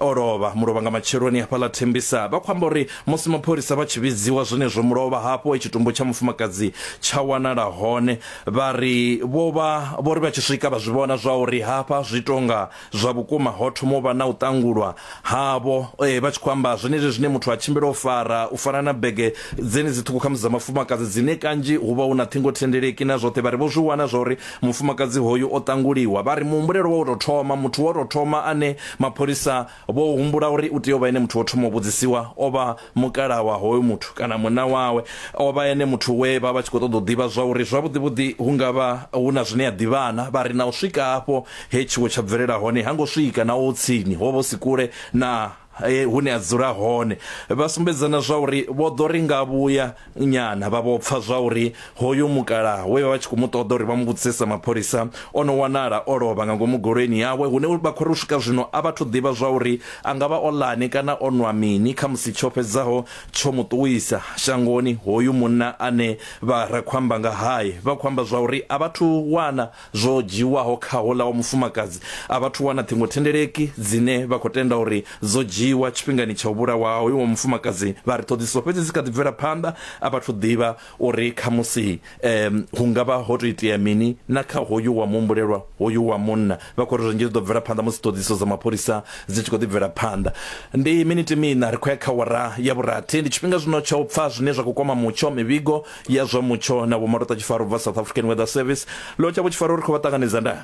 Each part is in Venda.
O lovha, mulovha nga matsheloni hafhaḽa Thembisa. Vha khou amba uri musi mapholisa vha tshi vhidziwa zwenezwo mulovha hafho he tshitumbu tsha mufumakadzi tsha wanala hone. Vha ri vho vha vho ri vha tshi swika vha zwi vhona zwa uri hafha zwi tonga zwa vhukuma ho thoma u vha na u ṱangulwa havho eh, vha tshi khou amba zwenezwi zwine muthu a tshimbila o fara u fana na bege dzenedzi ṱhukhu khamusi dza mafumakadzi dzine kanzhi hu vha hu na ṱhingothendeleki na zwoṱhe vha ri vho zwi wana zwa uri Mufumakadzi hoyu o ṱanguliwa, vha ri muhumbulelo wa u tou thoma, muthu wa u tou thoma ane mapholisa vho humbula uri u tea u vha ene muthu wo thoma u vhudzisiwa o vha mukalaha wa hoyo muthu kana munna wawe. O vha ene muthu we vha vha tshi khou ṱoḓa u ḓivha zwa uri zwavhuḓivhuḓi hu nga vha hu na zwine a ḓivha-na. Vha ri na u swika afho he tshiwo tsha bvelela hone ha ngo swika naho hu tsini, ho vha hu si kule na He hune a dzula hone vha sumbedza na zwa uri vho ḓo ri nga vhuya nyana vha vho pfa zwa uri hoyu mukalaha we vha vha tshi khou mu ṱoḓa uri vha mu vhudzisesa mapholisa o no wanala o lovha nga ngomu goloini yawe hune vha khou ri u swika zwino a vhathu ḓivha zwa uri a nga vha o lani kana o nwa mini kha musi tsho fhedzaho tsho mu ṱuwisa shangoni hoyu munna ane vha ra khou amba nga hae vha khou amba zwa uri a vhathu wana zwo dzhiiwaho kha houḽa wa mufumakadzi a vhathu wana ṱhingothendeleki dzine vha khou tenda uri dzo dzhiiwa tshifhingani tsha u vhulawa ha hoyu wa mufumakadzi vha ri ṱhoḓisiso fhedzi dzi kha ḓi bvela phanḓa a vhathu ḓivha uri khamusi um hu nga vha ho tou itea mini na kha hoyu wa muhumbulelwa hoyu wa munna vha khou ri zwinzhi zwi ḓo bvela phanḓa musi ṱhoḓisiso dza mapholisa dzi tshi khou ḓi bvela phanḓa ndi miniti miṋa ri khou ya kha wara ya vhurathi ndi tshifhinga zwino tsha u pfa zwine zwa khou kwama mutsho mivhigo ya zwa mutsho na vho marota tshifaro bva south african weather service lotsha vho tshifaro ri khou vha ṱanganedza nda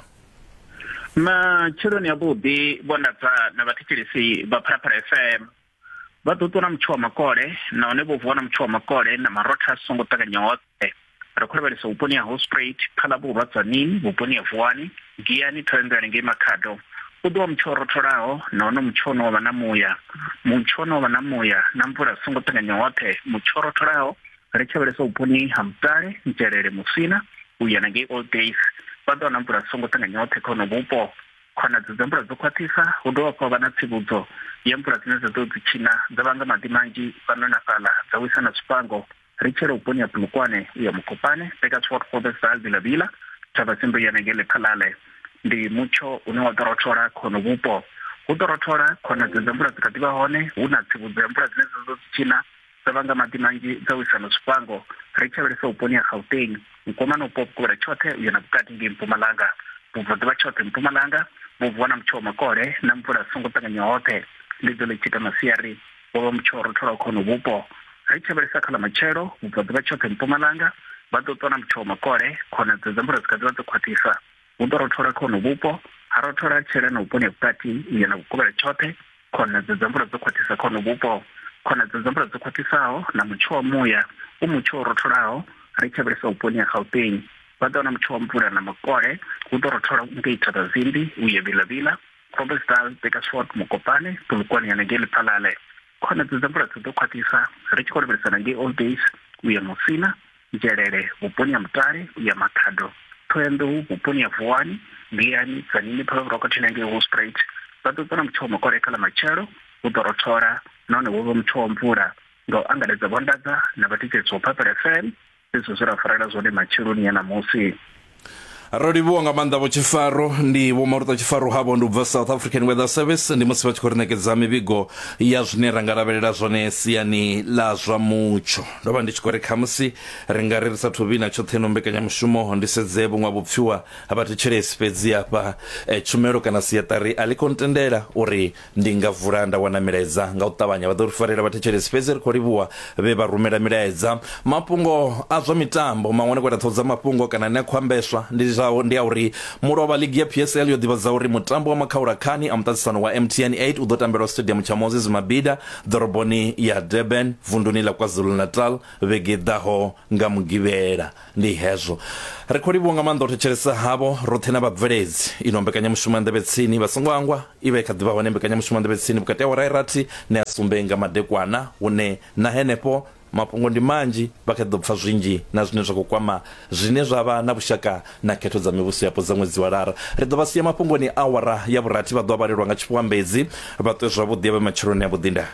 matsheloni avhuḓi vho ndadza na vhathetshelesi vha phalaphala fm vha ḓo ṱuwa na mutsho wa makole nahone vho vuwa na mutsho wa makole na marotha a songo ṱanganya hoṱhe ri khou lavhelesa vhuponi ha hostraight phala vhurwa dzanini vhuponi ha vuwani giyani thorendelani ngei makhado u ḓo wa mutsho o rotholaho nahone mutsho ono vha na muya mutsho ono vha na muya na mvula songo ṱanganya hoṱhe mutsho o rotholaho ri tshi lavhelesa vhuponi ha mutale ntelele muswina u ya na ngei old days vha ḓo wana mvula dzi songo ṱanganya oṱhe kha hono vhupo khonadzeo dza mvula dzo khwaṱhisa hu dovha hafhu ha vha na tsivhudzo ya mvula dzine dza ḓo dzi tshina dza vhanga maḓi manzhi fhano na fhaḽa dza wisa na zwifhango ri tshela vhuponi ha pulukwane u ya mukopane beka tswot fobesal vilavila thavha tsimbo ya nenge lephalale ndi mutsho une wa ḓo rothola khono vhupo hu ḓo rothola khonadzeo dza mvula dzi kha ḓivha hone hu na tsivhudzo ya mvula dzine dza ḓo dzi tshina Sa vhanga maḓi manzhi dza u isano zwifhango, ri tshi lavhelesa vhuponi ha Gauteng, mukomana upo vhukovhela tshoṱhe u ya na vhukati ngei mpumalanga, vhubvaḓuvha tshoṱhe mpumalanga, vhubvo na mutsho wa makole na mvula zwi songo ṱanganya hoṱhe, ḽi ḓo ḽi tshi ita masiari, wa vha mutsho wo rotholaho kha honovhu vhupo. Ri tshi lavhelesa kha ḽa matshelo, vhubvaḓuvha tshoṱhe mpumalanga, vha ḓo ṱwa na mutsho wa makole, khonadzeo dza mvula dzi kha ḓi vha dzo khwaṱhisa. Hu ḓo rothola kha hono vhupo, ha rothola tshela na vhuponi ha vhukati u ya na vhukovhela tshoṱhe, khonedza dza mvula dzo khwaṱhisa kha hono vhupo, khonedza dza mvula dzo khwaṱhisaho na mutsho wa muya u mutsho wo rotholaho, ri tshavhelesa vhuponi ha Gauteng. Vha ḓo na mutsho wa mvula na makole, hu ḓo rothola ngei Thabazimbi u ya Vilavila, Groblersdal, Bakersford, Mokopane, Polokwane ya na ngei Lephalale. Khonedza dza mvula dzi ḓo khwaṱhisa ri tshi khou lavhelesana ngei Old Days u ya Musina, Nzhelele vhuponi ha Mutale ya Makhado, Thohoyanḓou vhuponi ha Vuwani, Mbiyani, Tzanini, Phalwa Vhurokothe na ngei Hospruit. Vha ḓo ṱana mutsho wa makole kha ḽa matshelo, hu ḓo rothola nahone hu vhe mutsho wa mvula. Nga u angaredza vho anḓadza na vhathetshelesi vha Purple FM zwe zwa zwe ra farela zwone matsheloni a ṋamusi. ro livhuwa nga maanḓa vho tshifaro ndi vho maluta tshifaro havho ndi u bva south african weather service ndi musi vha tshi khou ri ṋekedza mivhigo ya zwine ra nga lavhelela zwone siani ḽa zwa mutsho ndo vha ndi tshi khou ri khamusi ri nga ri ri sa thuvhi na tshoṱhe no mbekanyamushumo ndi sedze vhuṅwe vhupfiwa ha vhathetshelesi fhedzi hafha eh, tshumelo kana siaṱari a ḽi khou ntendela uri Ndi nga vula nda wana milaedza nga u ṱavhanya. Vha ḓo ri farela vhathetshelesi, fhedzi ri khou livhuwa vhe vha rumela milaedza. Mafhungo a zwa mitambo maṅwe ane a khou ita ṱhohozamafhungo kana ane a khou ambeswa ndi zwa ndi a uri mulovha ligi ya PSL yo ḓivhadza uri mutambo wa makhaula khani a muṱaṱisano wa MTN 8 u ḓo tambelwa Stadium tsha Moses Mabhida ḓoroboni ya Durban vunduni ḽa KwaZulu-Natal vhege i ḓaho. nga mugivhela ndi hezwo ri khou livhuwa nga maanḓa u thetshelesa havho roṱhe na vhabveledzi ino mbekanyamushumo ya nḓevhe tsini vha songo angwa i vha i kha ḓivha hone mbekanyamushumo ya nḓevhe tsini vhukati ha wara irathi ne ya sumbe nga madekwana hune na henefho mafhungo ndi manzhi vha kha ḓi ḓo pfa zwinzhi na zwine zwa khou kwama zwine zwa vha na vhushaka na khetho dza mivhuso yapo dza ṅwedzi wa lara ri ḓo vha sia mafhungoni awara ya vhurathi vha ḓo vha vhalelwa nga tshifhuambedzi vha ṱwe zwavhuḓi ya vhe matsheloni a vhuḓinda